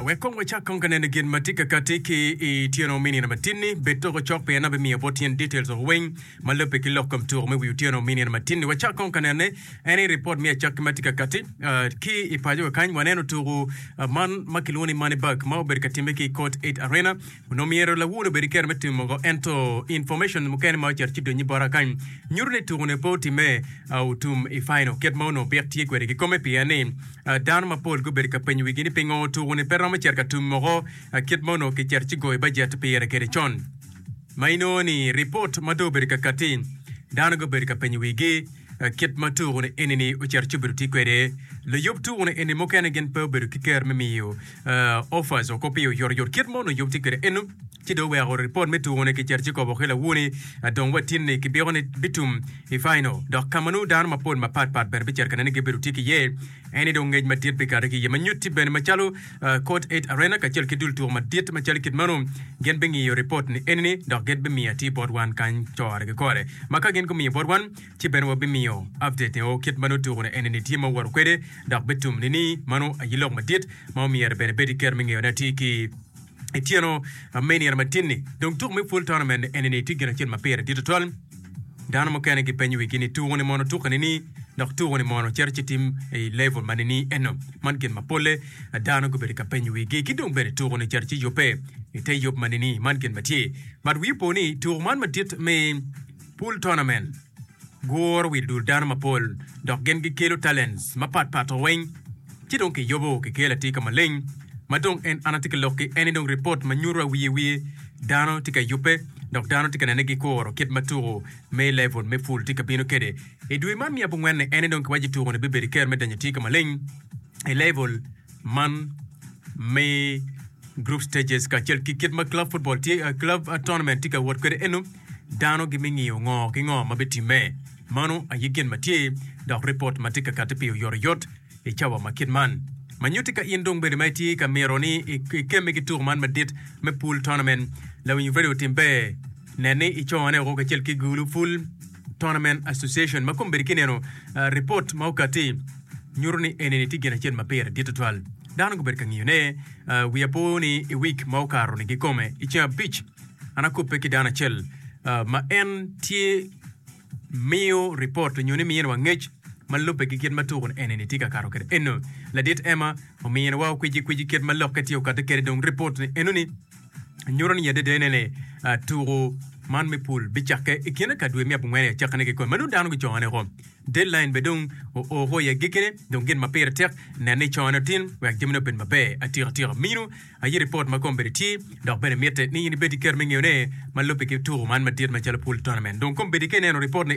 Wek kong wacak kong ka neno gin ma tye ka kati ki i tyeno me nino matinni. Bed toko cok pien an abimiyo bot tyen details woko weng ma lobbe ki lok kom tuko me wi otyeno me nino matinni. Wacak kong ka nene en i report me acakki ma tye ka kati. Ah, ki i pacowa kany waneno tuko ah, man ma kilwongo ni Money Bag ma obedo ka timme ki i Court Eight Arena. Onongo myero lawur obed ki kero me timo mogo, ento information mukene ma ocito ci donyi bot akany nyuto ni tuku-ni pe otimme otum i final, kit ma onongo Bik tye kwede kikome pien ni dano mapol gubedo ka penyo wigi ni pingo tuku-ni pe romo cito ka tum mogo kit ma onongo kicito ci goyo bajet pire kede con. Ma inongo ni ripot ma dong obedo ka katti, dano gubedo ka penyo wigi kit ma tuku-ni eni-ni ocito ci obedo ti kwede. Luyub tuku-ni eni mukene gin pe obedo ki ker me miyo Ofas okoppiyo oyotoyot kit ma onongo yub tye kwede eno, ci dong oweko ripot me tuko-ni kiceto ci kobo ki lawoni dong watini ni kibiko ni bitum i fainal. Dok ka ma nongo dano mapol mapat pat bene bicito ka nene gibedo tye ki iye, en ni dong ngec madit bikato ki iye ma nyutti bene macalo Court Eight Arena kacel ki dul tuko madit macalo kit meno. Gin bingiyo ripot ni eni-ni dok gin bimiyo atir bot wan kany coro gikore. Ma ka gin gumiyo bot wan, ci bene wabimiyo update o kit ma nongo tuku ni enini tye ma owoto kwede dok bitum ni ni mano aye lok madit ma omyero bene bed iketo me ngeyo ni atir ki ityeno me inino matin ni dong tuku me full tournament enini tye gin acel ma pire dit tutwal dano mukene gi penyo wigi ni tuku ni mono tuke ni ni dok tuku ni mono cito ci tim i level ma ni ni eno man gin ma pole dano gubedo ka penyo wigi ki dong bene tuku ni cito ci yubbe ite yub ma ni ni man gin matye but wi opo ni tuku man madit me Pool Tournament guro wi dul dano mapol dok gin gikelo talents mapat pat o weng ci dong ki yobo ki kelo atika maleng ma dong en an atye ki lok ki eni dong report ma nyuto awiye wiye dano tye ka yube dok dano tye ka nene gi kuro kit ma tuko me level me pool tye ka bino kede I dwe man me abongwen ni eni dong ki waco tuko ni bibedo ker me danyo atika maleng I level Man me group stages kacel ki kit ma club football tye uh, club uh, tournament tye ka wot kwede eno, dano gimingiyo ngo ki ngo ma bitimme. Mano aye gin ma tye, dok report ma tye ka kati pi oyotoyot i cawa ma kit man. Ma nyuti ka in dong bene ma itye ka miro ni ikemme ki tuko man madit me pool tournament, lawiny radio timbe, nen ni icone woko kacel ki gulu full Tournament Association ma kombedo ki neno ripot ma okatti nyuto ni enini tye gin acel ma pire dit tutwal. Dano gubedo ka ngiyone wi apo ni i wik ma okato ni gikome i ceng abic an akobbe ki dano acel ma en tye miyo ripot nyo ni miniwa ngec ma lubbe ki kit ma tuku enini tye ka kato kwede eno. Ladit Emma ominiwa okwiji kwiji kit ma lokke tye okatte kwede dong ripot ni enoni. nyuto ni adedene ni tuko man me pul bicakke i kine ka dwe me abongwen aye cakke ne kikome ma nongo dano gicoyo ne ko deadline be dong oo ko iye gikine dong gin ma pire tek nen ni coyo ne otin wek jamine obed maber atika tika minu aye report ma kom bene tye dok bene mitte ni in ibed ki kero me ngeyo ne ma lubbe ki tuko man madit macalo pul tournament dong kom bedi ka ineno report ni